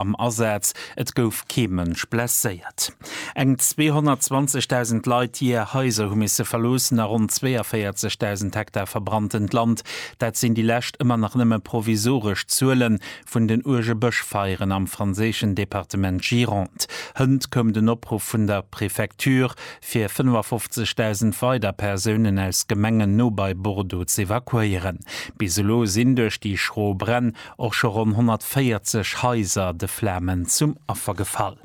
am Asaz, et gouf kee Mënsch blesséiert. Eng 220.000 Leit, déi är Haiser hu misse verloossen a ronn 42.000 Hektar verbranntent Land, dat sinn déi lescht, ëmmer nach nëmme provisoresch Zuele vun den uerge Bëschfeieren am franséischen Departement Gironde. Hënt koum den Opruff vun der Prefecture, fir 55.000 weider Persounen aus Gemengen no bei Bordeaux z'evakuéieren. Bis elo sinn duerch déi schro Bränn och scho ronn 140 Haiser de Flamen zum Affer gefall.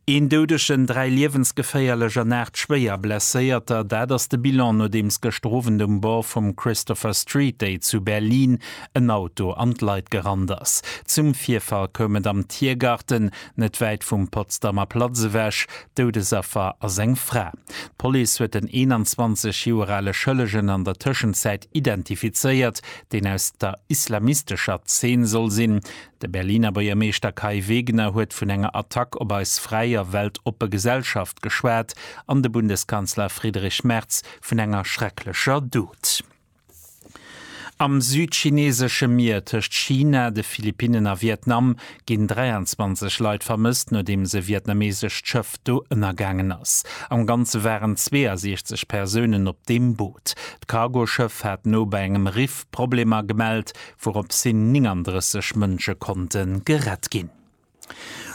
Een Doudegen, dräi liewensgeféierlech an aacht schwéier Blesséierter, dat ass de Bilan, nodeems gëschter Owend um Bord vum Christopher Street Day zu Berlin en Auto an d'Leit gerannt ass. Zum Virfall koum et am Tiergarten, net wäit vum Potsdamer Platz ewech. Doudesaffer ass eng Fra. D'Police huet den 21 Joer ale Schëllegen an der Tëschenzäit identifizéiert, deen aus der islamistescher Zeen soll sinn. De Berliner Buergermeeschter Kai Wegner huet vun enger Attack op eis fräi a weltoppe Gesellschaft geschwat an de Bundeskanzler Friedrich Merz vun enger schrecklecher Dot. Am südchinesesche Mier tëscht China, de Philippinnen a Vietnam ginn 23 Leit vermësst, nodeems e vietnameesescht Schëff do ënnergaangen ass. Am Ganze waren 62 Persounen op deem Boot. D'Cargoschëff hat no bei engem Riff Problemer gemellt, wourops hin 39 Mënsche konnte gerett ginn.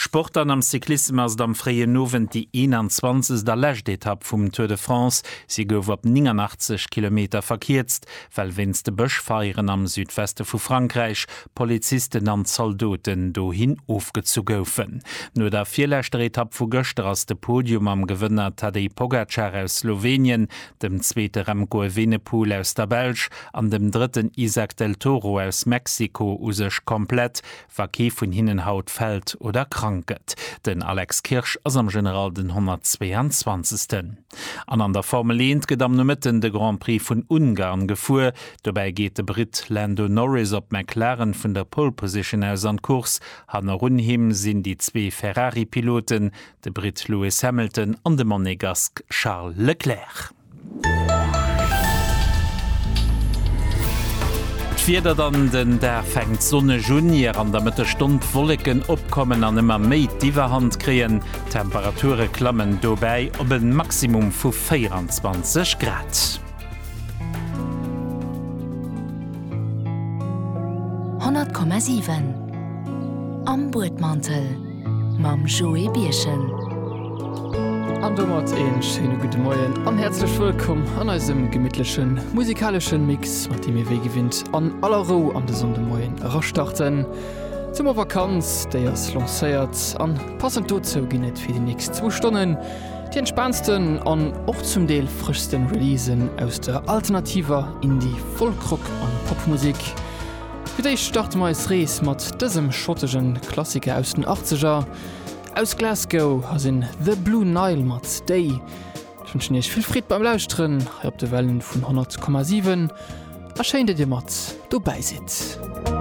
Sport an am Cyclissem ass et am fréien Owend déi 21. a lescht Etapp vum Tour de France. Si gouf op 89 Kilometer verkierzt, well wéinst de Bëschfeieren am Südweste vu Frankräich Polizisten an Zaldoten dohin ofgezu goufen. No der virleschter Etapp vu gëschter ass de Podium am Gewënner Tadej Pogacar aus Slowenien, dem zweete Remco Evenepoel aus der Belsch an dem drëtten Izack Del Toro aus Mexiko u sech komplett, wa kee vun hinnen haut fält oder krank gëtt. Den Alex Kirsch ass am General den 122. An an der Formel Eent gëtt am Nomëtten de Grand Prix vun Ungarn gefuer. Dobäi geet de Britt Lando Norris op McLaren vun der Pole Position aus an d'Course. Hannerun him sinn déi zwee Ferrari-Piloten, de Britt Lewis Hamilton an de Monegask Charles Leclerc. D'Wieder dann, Den Dag fänkt sonneg un, ier an der Mëttesstonn d'Wolleken opkommen an ëmmer méi d'Iwwerhand kréien. D'Temperature klammen dobäi op e Maximum vu 24 Grad. 100,7 Am Buedmantel mam Joé Birchen. An domat een schéine gudde Moien an häerzlech wëllkomm an eisem gemittlechen musikaleschen Mix, mat deem mir wéi gewinnt an aller Rou an de Sonndemoien erastarten. D'Summervakanz, déi ass lancéiert an passend dozou ginn et fir déi nächst zwou Stonnen déi entspaantsten an och zum Deel frëschsten Releasen aus der alternativer Indie-, Folk-Rock an Popmusek. Fir d'éischt starte mer eis Rees mat dësem schottegen Klassiker aus den Achtzeger. Aus Glasgow ass en The Blue Nile mat Stay. Ech wënschen iech vill Freed beim Lauschteren hei op de Wellen vun 100,7 a schéin dat dir mat dobäi sidd.